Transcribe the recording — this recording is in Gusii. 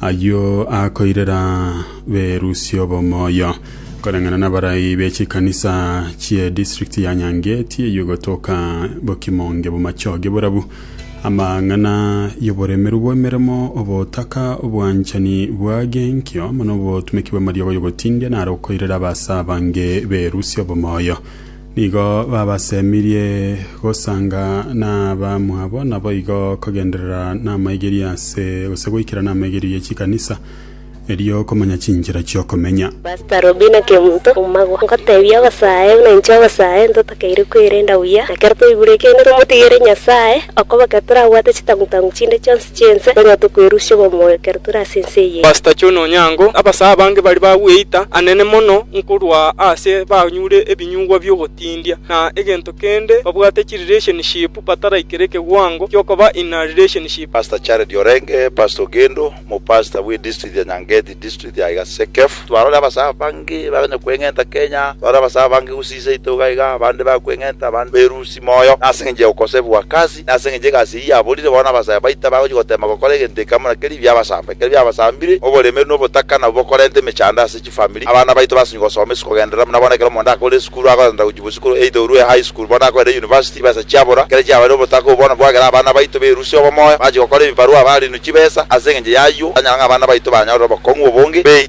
Ayio akoirera berusia obomoyo, koreng'ana nabarai be chikanisa chie district ya Nyange tieyo gotoka bokimonge bomachoge borabu, amang'ana y'oboremeru bw'emeremo, obotaka, obwanchani bwage enkio, amo nobotumeki bw'amariogo y'ogotindia naro okoirera abase abange berusia obomoyo. Nigo babasemirie gosanga nabamwabo, naboigo kogenderera namaigerio ase gose goikera namaigerio ye chikanisa, erio komanya chinchera chi'okomenya. Pastor Robina Kemunto, Omagwa, Ngotebia obosae buna inche obosae ntotakeire kwerenda buya, na kero toigure ekiagera tomotigere Nyasae, okobake torabwate chitangu tangu chinde chionsi, Chi'ense, nonya tokwerusia obomoyo ekero tore ase ense eye. Pastor John Onyango, Abasae abange baria bagweita anene mono nkorwa aase banyure ebinyugwa bi'ogotindia, na egento kende babwate chirelationship bataraikera ekeguango giokoba in a relationship. Pastor Jared Orenge, Pastor Ogendo, Omopastor bwe District ya Nyangeti, District ya iga Sekef. Twarore abasae abange baganya kweng'enta Kenya, twarore abasae abange gose inse yaito iga iga, abande bakweng'enta, abande berusi moyo, nase engencho ya okosebu gwa kasi. Na ase engencho egasi eyio yaborire, bono abasaya baito tibagochia goteema gokora egento eke amo na keria biabasamba. Ekero biabasambire, oboremeru na obotaka nabwo bokorenta emechando ase chifamiri. Abana baito basinye gosoma isiko genderera buna bono ekero omonto akorire esukuru agoenda gochia bosukuru either orue high school bono akoenda university chibesa chiabora. Ekero chiabarire obotaka obwo bono bwagera abana baito berusia obomoyo bachia gokora ebibarua barinwe chibesa. Ase engencho y'ayio tanyara ng'a abana baito banyorere obokong'u obonge. Be.